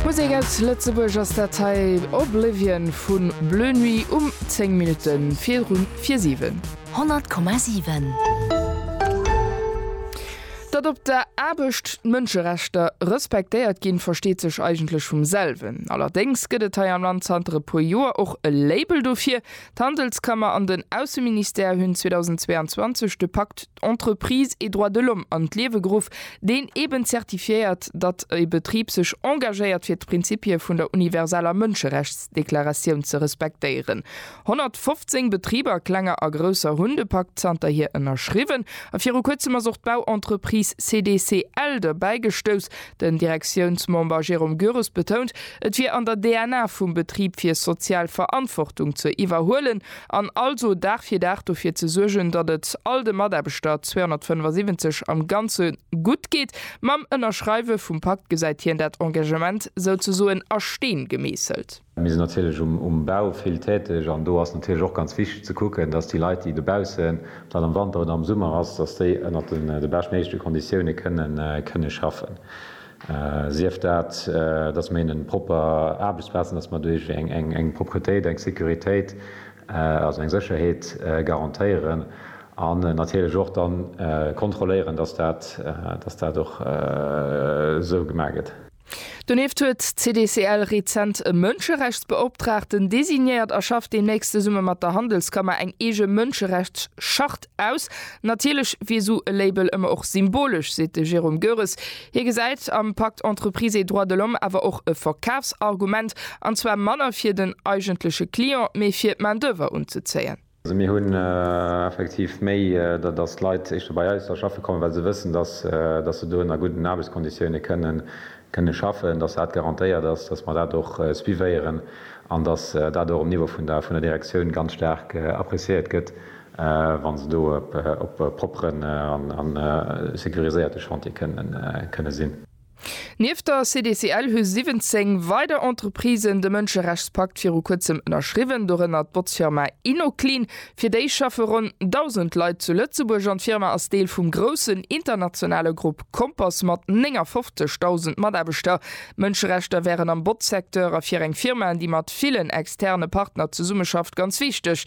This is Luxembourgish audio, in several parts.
Musek aus Lëtzebuerg ass dat hei, Oblivion vu Bleu Nuit um 10 Minutte viru 7. 100,7. Datt op der Aarbecht d'Mënscherechter respektéiert ginn, versteet sech eigentlech vum selwen. Allerdéngs gëtt et hei am Land zanter e puer Joer och e Label dofir. D'Handelskammer an den Ausseministère hunn 2022 de Pakt Entreprises et droits de l'homme an d'Liewe geruff, deen eeben zertifiéiert, datt e Betrib sech engagéiert fir d'Prinzippie vun der universaler Mënscherechtsdeklaratioun ze respektéieren. 115 Betriber, klenger a grousser, hunn de Pakt zanterhier ënnerschriwwen a viru kuerzem ass och d'Bauentreprise CDCL derbäi gestouss. Den Direktiounsmember Jérôme Gures betount, et wier an der DNA vum Betrib fir sozial Verantwortung ze iwwerhuelen. an also Dag fir Dag dofir ze suergen, datt et all de Mataarbechter, 275 am Ganze, gutt geet. Mam Ënnerschreiwe vum Pakt gesäit hien dat Engagement souzesoen a Steen gemeesselt. Mir sinn natierlech um Bau vill täteg an do ass natierlech och ganz wichteg ze kucken, datt déi Leit, déi dobaussen, ob dat am Wanter oder am Summer ass, datt déi ënnert de beschtméigleche Konditioune kënne schaffen. Sief dat, datt mer hinnen propper Aarbechtsplazen, datt mer doduerch eng Propretéit, eng Sécuritéit, also eng Sécherheet garantéieren an natierlech och da kontrolléieren, datt dat och esou gemaach gëtt. Donieft huet d'CDCL rezent e Mënscherechtsbeoptraagten designéiert a schafft deemnächst zesumme mat der Handelskammer eng eege Mënscherechtschart Aus. Natierlech wier esou e Label ëmmer och symbolesch, seet de Jérôme Goeres. Hie gesäit am Pacte Entreprises et droits de l'homme awer och e Verkafsargument, an zwar manner fir den eigentleche Client, mee fir d'Main-d'oeuvre unzezéien. Also mir hunn effektiv méi, datt d'Leit éischter bei eis da schaffe kommen, well se wëssen, datt se do ënner gudden Aarbechtskonditioune kënne schaffen, datt dat garantéiert ass, datt mer dat och suivéieren an datt dat och um Niveau vun der Direktioun ganz staark appreciéiert gëtt, wa se do op e propperen a securiséierte Chantier kënne sinn. Nieft der CDCL hu 17 weider Entreprisen de Mënscherechtspakt viru kuerzem ënnerschriwwen, dorënner d'Botzfirma Inoclean. Fir déi schaffe ronn 1.000 Leit zu Lëtzebuerg an d'Firma ass Deel vum groussen internationale Grupp Compass mat 59.000 Mataarbechter. Mënscherechter wären am Botzsecteur a fir eng Firma, déi mat villen externe Partner zesummeschafft, ganz wichteg.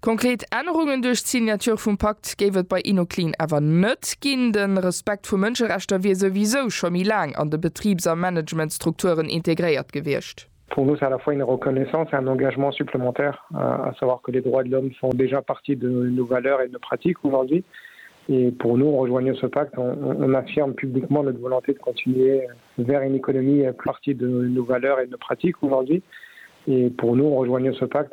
Konkret Ännerungen duerch d'Signature vum Pakt géif et bei Inoclean awer net ginn. De Respekt vu Mënscherechter wier souwisou scho méi laang an de Betribs a Managementstrukturen integréiert gewiescht. Pour nous, ça la fois une reconnaissance et un engagement supplémentaire, à savoir que les droits de l'homme font déjà partie de nos valeurs et de nos pratiques aujourd'hui. Et pour nous, en rejoignant ce pacte, on affirme publiquement notre volonté de continuer vers une économie plus. Partie de nos valeurs et de nos pratiques aujourd'hui. Et pour nous, en rejoignant ce pacte,